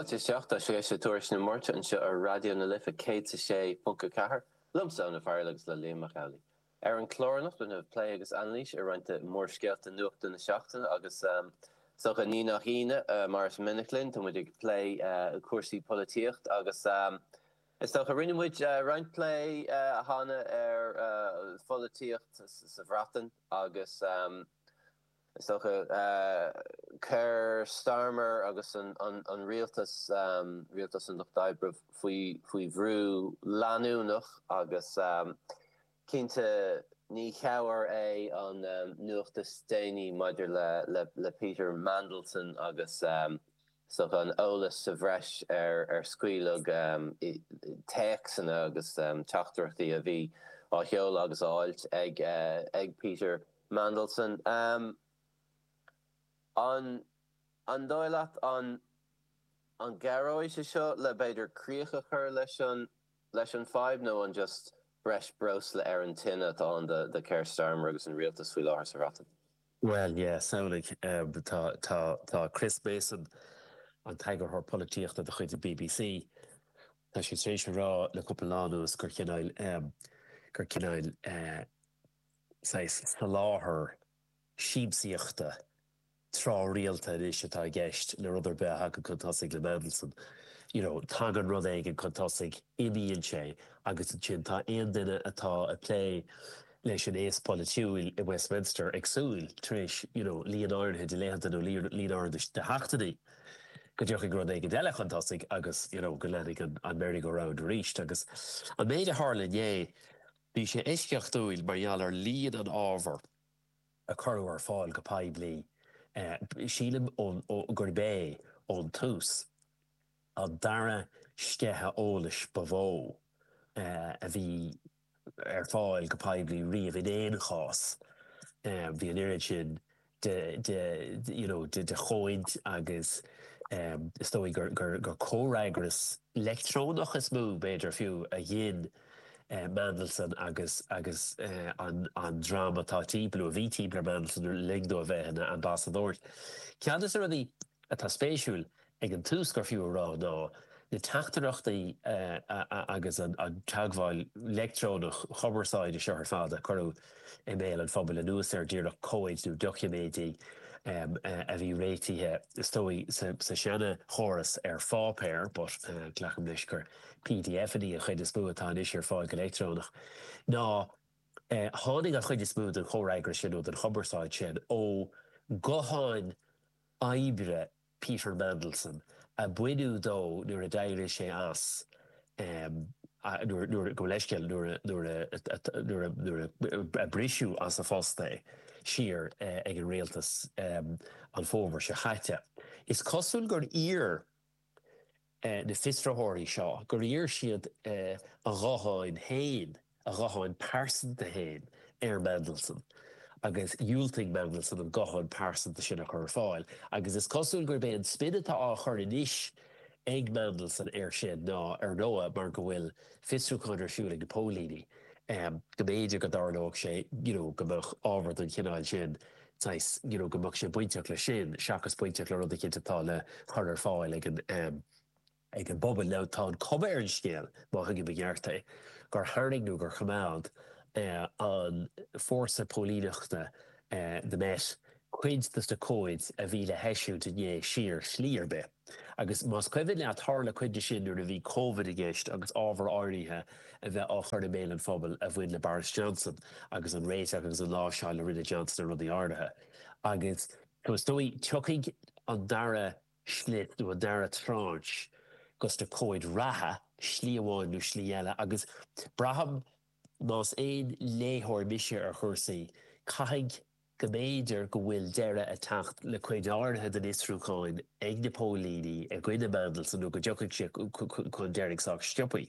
Fáilte isteach, seo é Turas na Máirte anseo ar Raidió na Life 106.4, liomsa, Eoin Ó Fearghail agus le Liam Mac Amhlaigh. Ar an chlár anocht plé agus anailís ar roinnt de mhórscéalta nuachta na seachtaine agus is dócha ní nach ionadh mar is minic linn, tá muid ag plé cúrsaí polaitíocht agus is dócha rinne muid roinnt plé cheana ar pholaitíocht sa Bhreatain agus. Is dócha. Keir Starmer agus an rialtas, rialtas an Lucht Oibre, faoi bhrú leanúnach agus cinnte ní cabhair é an nuacht is déanaí maidir le Peter Mandelson agus is dócha an eolas sa bhreis a scaoileadh téacsanna agus teachtaireachtaí a bhí á sheoladh agus á fháilt ag Peter Mandelson. An an dóigh leat an an gcabhróidh sé seo le b'fhéidir críoch a chur leis an leis an fadhb nó an just breis breosla ar an tine atá ann do do Keir Starmer agus an rialtas faoi láthair sa Bhreatain? Bhuel, yeah, samhlaigh, tá, tá, tá Chris Mason, an t-eagarthóir polaitíochta de chuid an bbc, tá sé tar éis a rá le cúpla lá anuas gur cineáil, gur cineáil, saghas soláthar siamsaíochta tráthrialta anois atá i gceist le rud ar bith a thagann chun tosaigh le Mandelson. You know, tagann rud éigin chun tosaigh, imíonn sé agus ansin tá aon duine atá ag plé leis an aos polaitiúil i Westminster ag súil, tar éis, you know, líon áirithe de laethanta nó líon áirithe de sheachtainí, go dtiocfaidh rud éigin eile chun tosaigh agus, you know, go leanfaidh an merry-go-round arís. Agus an méid a tharla inné, Bhí sé eisceachtúil mar gheall ar líon an ábhair a cuireadh ar fáil go poiblí. Sílim, eh, gurb é, ón tús, an dara sceitheadh eolais ba mhó a bhí ar fáil go poiblí riamh in aon chás. Bhí an oiread sin de you know de de chomhaid agus em is dóigh gur gur gur comhfhreagras leictreonach is mó b'fhéidir fiú a ghin eh Mandelson agus agus eh an an dream atá timpeall nó a bhí timpeall ar Mandelson le linn dó a bheith ina ambasadóir. Ceann de na rudaí atá spéisiúil ag an tús gur fiú a rá ná na teachtaireachtaí agus an teagmháil leictreonach chumarsáide seo ar fad a cuireadh i mbéal an phobail anuas ar díreach comhaid nó doiciméidí a bhí réitithe is dóigh sa seana chóras ar pháipéar but glacaim leis gur PDFanna an chuid is mó atá anois ar fáil go leictreonach ná tháinig an chuid is mó den chomhfhreagras sin nó den chumarsáid sin ó ghutháin oibre Peter Mandelson, a baineadh de nuair a d'éirigh sé as, nuair a, go bhfuil leithscéal, nuair a, nuair a, nuair a briseadh as a phost é thiar ag an rialtas an fómhar seo caite. Is cosúil gur iarr. na fiosraitheoirí seo gur iarr siad a ghuthán féin, a ghuthán pearsanta féin, ar Mandelson agus dhiúltaigh Mandelson an guthán pearsanta sin a chur ar fáil agus is cosúil gurb é an spin atá á chur anois ag Mandelson air sin ná, ar ndóigh, mar go bhfuil fiosrúchán ar siúl ag na póilíní, go mb'fhéidir go dtarlódh sé, you know, go mbeadh ábhar den chineál sin saghas you know go mbeadh sé bainteach leis sin seachas bainteach le rud eicínt atá le cur ar fáil ag an ehm ag an bpobal. Now tá an chuma ar an scéal, má thuigim i gceart é, gur tharraing nó gur choimeád eh an fórsa póilíneachta eh the Met cuid dos na comhaid a bhí le heisiúint inné siar slí ar bith. Agus más cuimhin leat, tharla cuid de sin nuair a bhí Covid i gceist agus ábhair áirithe a bheith á chur i mbéal an phobail a bhain le Boris Johnson agus an réiteach agus an láimhseáil a rinne Johnson ar rudaí áirithe. Agus is dóigh go, tiocfaidh an dara slice nó an dara tranche dos na comhaid reatha, slí amháin nó slí eile. Agus braithim, más aon léitheoir mise ar chúrsaí, caithfidh. go mb'fhéidir go bhfuil deireadh ag teacht le cuid áirithe den fhiosrúchán ag na póilíní i gcoinne Mandelson nó go dtiocfaidh sé chun deiridh sách sciobtha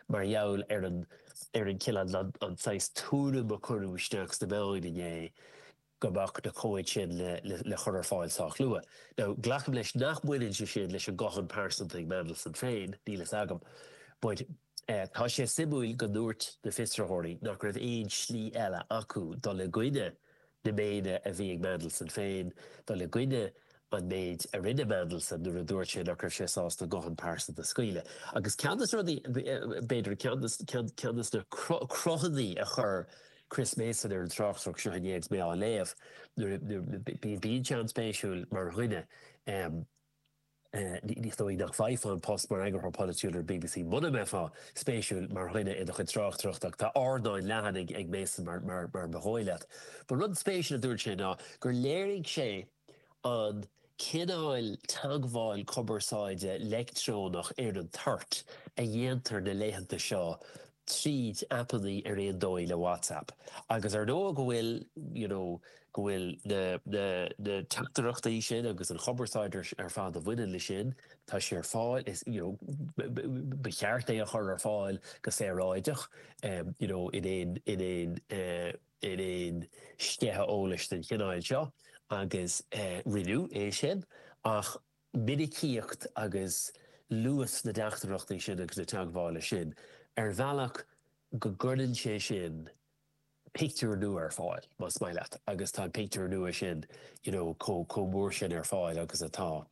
mar gheall ar an ar an cill an saghas tuairim a cuireadh isteach sna meáin inné go mbeadh na comhaid sin le le cur ar fáil sách luath. Now glacaim leis nach mbaineann sé sin leis an guthán pearsanta ag Mandelson féin, níl fhios agam but, Tá sé suimiúil go ndúirt na fiosraitheoirí nach raibh aon slí eile acu dul i gcoinne na méine a bhí ag Mandelson féin, dul i gcoinne an méid a rinne Mandelson nuair a dúirt sé nach raibh sé sásta an guthán pearsanta a scaoileadh. Agus ceann de na rudaí, b'fhéidir, ceann de na cruthanna a chuir Chris Mason ar an tráchtaireacht seo inné agus mé á léamh, bíonn sé an-spéisiúil mar dhuine, Is dóigh liom nach bhfaighfeá an post mar eagarthóir polaitiúil ar bbc muna mbeifeá spéisiúil mar dhuine i do chuid tráchtaireachta ach tá ardán leathan ag Mason mar ba dhóigh leat. Ba rud spéisiúil a dúirt sé ná gur léirigh sé an cineál teagmháil cumarsáide leictreonach ar an toirt a dhéantar na laethanta seo tríd aipeanna ar ar nós, ar ndóigh le WhatsApp agus ar ndóigh go bhfuil you know go bhfuil na na na teachtaireachtaí sin agus an chumarsáid ar ar fad a bhaineann le sin tá sé ar fáil is you know ba cheart é a chur ar fáil go saoráideach em you know in aon in aon eh in aon sceitheadh eolais den chineáil seo agus eh rinneadh é sin ach minicíocht agus luas na dteachtaireachtaí sin agus na teagmhála sin ar bhealach go gcuireann sé sin pictiúr nua ar fáil, más maith leat, agus tá an pictiúr nua sin you know chomh mór sin ar fáil agus atá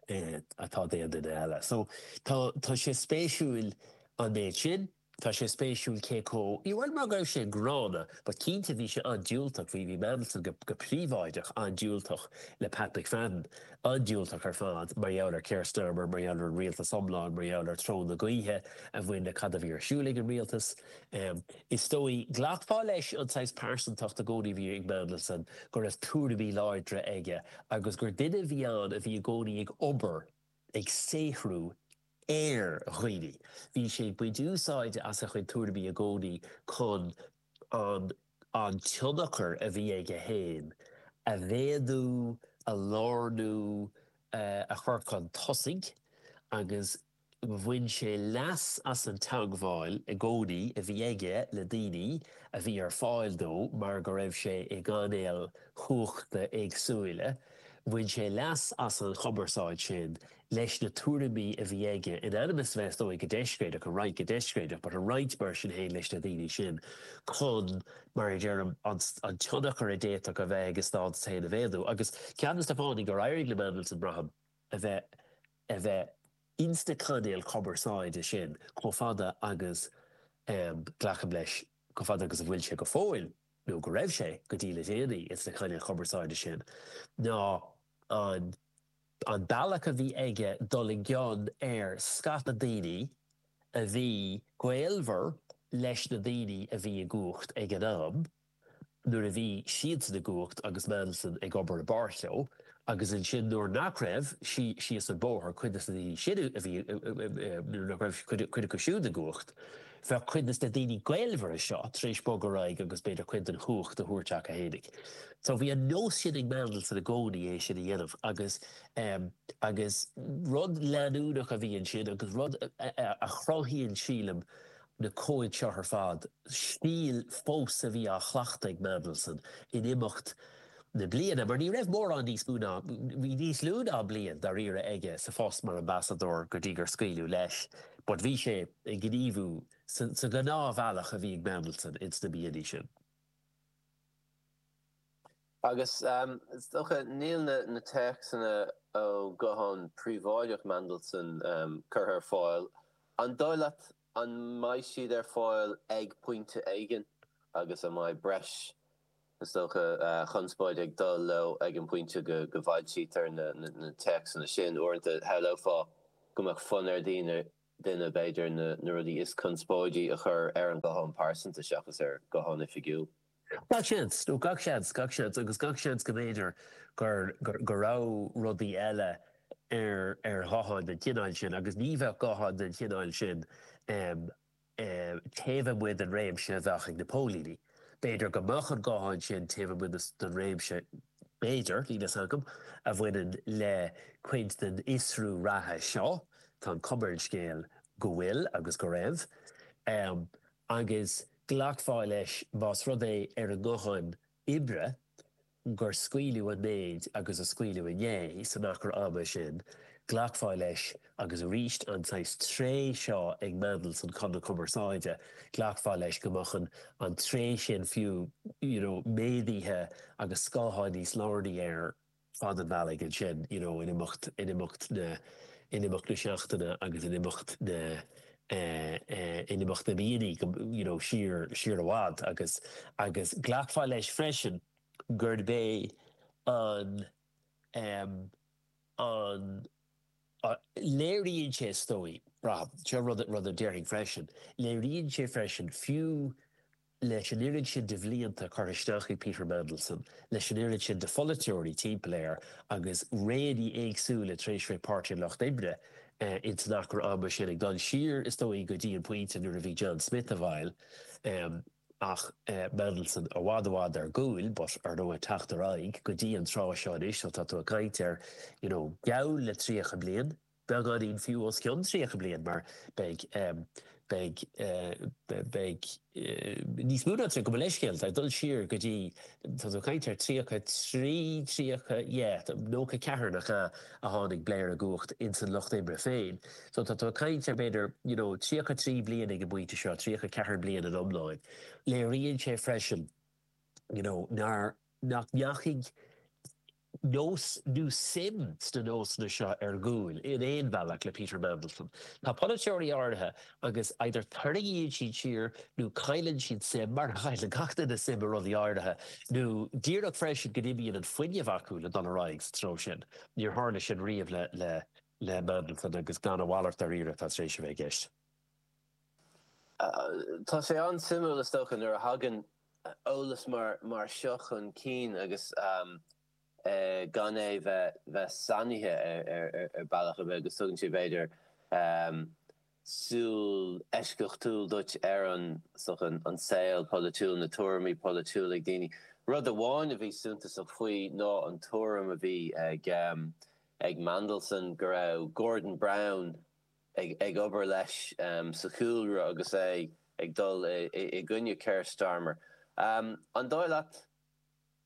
atá d'aon duine eile. So tá sé spéisiúil an méid sin. Tá sé spéisiúil cé comh, ní amháin mar go raibh sé gránna ach cinnte bhí sé an-diúltach, bhí, bhí Mandelson go, go príobháideach an-diúltach le Pat McFadden, an-diúltach ar fad mar gheall ar Keir Starmer, mar gheall ar an rialtas iomlán, mar gheall ar treo na gaoithe a bhain le cad a bhí ar siúl ag an rialtas. Is dóigh, glacfá leis an saghas pearsantacht i gcónaí a bhí ag Mandelson, go raibh tuairimí láidre aige agus gur duine a bhí ann a bhí i gcónaí ag obair, ag saothrú, ar dhaoine. Bhí sé ag baint úsáide as a chuid tuairimí i gcónaí chun an an tionchar a bhí aige féin a mhéadú, a lárnú, a chur chun tosaigh agus bhain sé leas as an teagmháil i gcónaí a bhí aige le daoine a bhí ar fáil dó mar go raibh sé i gcainéil chumhachta éagsúla Bhain sé leas as an chumarsáid sin leis na tuairimí a bhí aige in ainm is a bheith is dóigh go deiscréideach, a roinnt go deiscréideach but a roinnt mar sin féin leis na daoine sin chun, mar a deirim, an tionchar a d'fhéadfadh a bheith aige, a stádas féin a mhéadú. Agus ceann de na fáthanna gur éirigh le Mandelson braithim a bheith a bheith insna cainéil chumarsáide sin chomh fada agus glacaim leis, chomh fada agus atá sé go fóill nó go raibh sé go dtí le déanaí ins na cainéil chumarsáide sin ná an an bealach a bhí aige dul i gcion ar scata daoine a bhí gaolmhar leis na daoine a bhí i gcumhacht ag an am nuair a bhí siadsan i gcumhacht agus Mandelson ag obair i bpáirt leo agus ansin nuair nach raibh, síos an bóthar, cuid de na daoine sin a bhí, nuair nach raibh cuid acu siúd i gcumhacht, bheadh cuid de na daoine gaolmhara seo tar éis bogadh ar aghaidh agus b'fhéidir cuid den chumhacht a tharraingt chucu fhéinig. So bhí an nós sin ag Mandelson i gcónaí é sin a dhéanamh agus, agus rud leanúnach a bhí ansin agus rud a chruthaíonn, sílim, na comhaid seo ar fad, stíl fós a bhí á chleachtadh ag Mandelson in imeacht na bliana mar ní raibh mórán níos mó ná, bhí níos lú ná bliain dáiríre aige sa phost mar ambasadóir go dtí gur scaoileadh leis but bhí sé ag gníomhú sa ghnáthbhealach a bhí ag Mandelson ins na blianta sin. Agus is dócha níl na téacsanna ó ghuthán príobháideach Mhandelson curtha ar fáil. An dóigh leat an mbeidh siad ar fáil ag pointe éigin agus an mbeidh breis is dócha conspóid ag dul leo ag an bpointe go bhfoilsítear na téacsanna sin? Uaireanta shamhlófá go mbeadh fonn ar dhaoine, duine, b'fhéidir, na rudaí is conspóidí a chur ar an guthán pearsanta seachas ar ghuthán oifigiúil. Gach seans, ó gach seans, gach seans agus gach seans go mb'fhéidir go raibh rudaí eile ar ar ghutháin den chineál sin agus ní bheadh gutháin den chineál sin taobh amuigh den réimse a bheadh ag na póilíní. B'fhéidir go mbeadh an guthán sin taobh amuigh den réimse, b'fhéidir, níl a fhios agam, a bhaineann le cuid den fhiosrú reatha seo, tá an chuma ar an scéal go bhfuil agus go raibh, agus. Glacfá leis más rud é ar an nguthán oibre gur scaoileadh an méid agus a scaoileadh inné san achar ama sin, glacfá leis agus arís an saghas tréith seo ag Mandelson chun na cumarsáide, glacfá leis go mbeadh an tréith sin fiú you know méadaithe agus scáthán níos lárnaí air. fad an bealaigh ansin you know in imeacht, in imeacht na, in imeacht na seachtaine agus in imeacht na eh, eh in imeacht na míonna go you know siar, siar i bhfad agus, agus glacfá leis freisin gurb é an em an léiríonn sé is dóigh, braithim, seo rud, rud a déarfainn freisin, léiríonn sé freisin fiú, leis an oiread sin de bhlianta curtha isteach ag Peter Mandelson, leis an oiread sin de pholaiteoirí timpeall air agus réanna éagsúla tar éis bheith ag Páirtí an Lucht Oibre in san achar ama sin, ag dul siar is dóigh go dtí an pointe nuair a bhí John Smith i bhfeighil ach Mandelson i bhfad i bhfad ar gcúl but ar ndóigh ag teacht ar aghaidh go dtí an tráth seo anois so tá tú ag caint ar you know geall le 30 bliain. beagáinín fiú os cionn 30 bliain mar beidh beidh beidh níos mó ná tá gabh mo leithscéal ag dul siar go dtí tá tú caint ar 33 30 yeah 94 nach ea a tháinig Blair i gcumhacht in san lucht oibre féin so tá tú caint ar b'fhéidir you know 33 bliain ag an bpointe seo 34 bliain in iomláin léiríonn sé freisin you know nár nach ndeachaigh nós nó suim sna nósanna seo ar gcúl in aon bhealach le Peter Mandelson. Tá polaiteoirí áirithe agus either tarraingíonn siad siar nó cailleann siad suim, mar a chailleann gach duine suim i rudaí áirithe, nó díreach freisin go n-imíonn an fuinneamh acu le dul ar aghaidh sa treo sin. Níor tharla sin riamh le Mandelson agus glan a mhalairt dáiríre atá tar éis a bheith i gceist. Tá sé an-suimiúil is dócha nuair a thagann eolas mar seo chun cinn agus gan é bheith sannaithe ar bhealach ar bith agus tugann sé b'fhéidir súil eisceachtúil duit ar an saol polaitiúil, na tuairimí polaitiúla ag daoine. Rud amháin a bhí suntasach faoi ná an tuairim a bhí ag Mandelson go raibh Gordon Brown, ag obair leis sa chúlra agus é ag dul i gcoinne Keir Starmer. An dóigh leat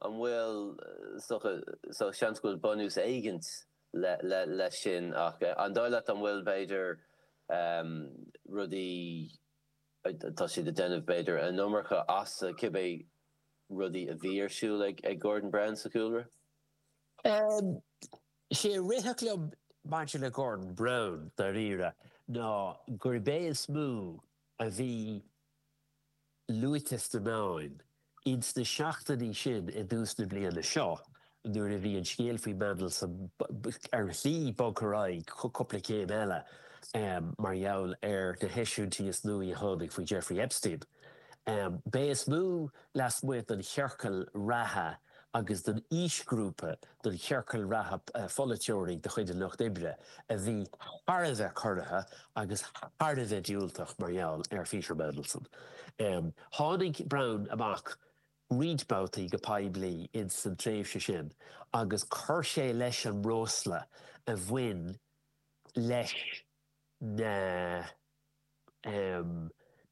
an bhfuil seans go bhfuil bunús éigin leis sin ach an dóigh leat an bhfuil b'fhéidir rudaí atá siad ag déanamh b'fhéidir an iomarca as cibé rudaí a bhí ar siúl ag Gordon Brown sa chúlra? Is é an rud a rithfeadh liom maidir le Gordon Brown, dáiríre, ná gurb é is mó a bhí luaite sna meáin ins na seachtainí sin i dtús na bliana seo nuair a bhí an scéal faoi Mandelson ar shlí bogtha ar aghaidh cúpla céim eile mar gheall ar na heisiúintí is nuaí a tháinig faoi Jeffrey Epstein. B'é is mó lasmuigh den chiorcal reatha agus don aoisghrúpa don chiorcal reatha polaiteoirí de chuid an Lucht Oibre a bhí thar a bheith corraithe agus thar a bheith diúltach mar gheall ar Pheter Mandelson. Tháinig Brown amach roinnt babhtaí go poiblí ins san tréimhse sin agus chuir sé leis an mbreosla a bhain leis na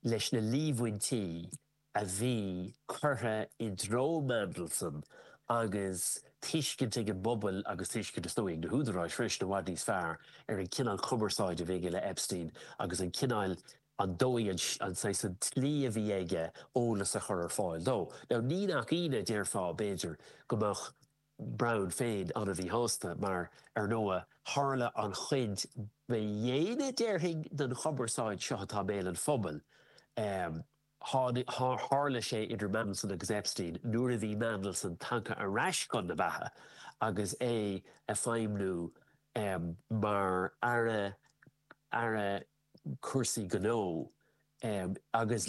leis na líomhaintí a bhí curtha i dtreo Mandelson agus tuiscint ag an bpobal agus tuiscint is dóigh ag na húdaráis freisin i bhfad níos fearr ar an cineál cumarsáide a bhí aige le Epstein agus an cineál, an dóigh, an an saghas, an tslí a bhí aige eolas a chur ar fáil dó. Now ní nach ionadh déarfá b'fhéidir go mbeadh Brown féin an-mhíshásta mar, ar ndóigh, tharla an chuid ba dhéine déarfainn den chumarsáid seo atá i mbéal an phobail, eh, Tharla sé idir Mandelson agus Epstein nuair a bhí Mandelson tagtha ar ais chun na beatha agus é ag feidhmniú mar aire cúrsaí gnó agus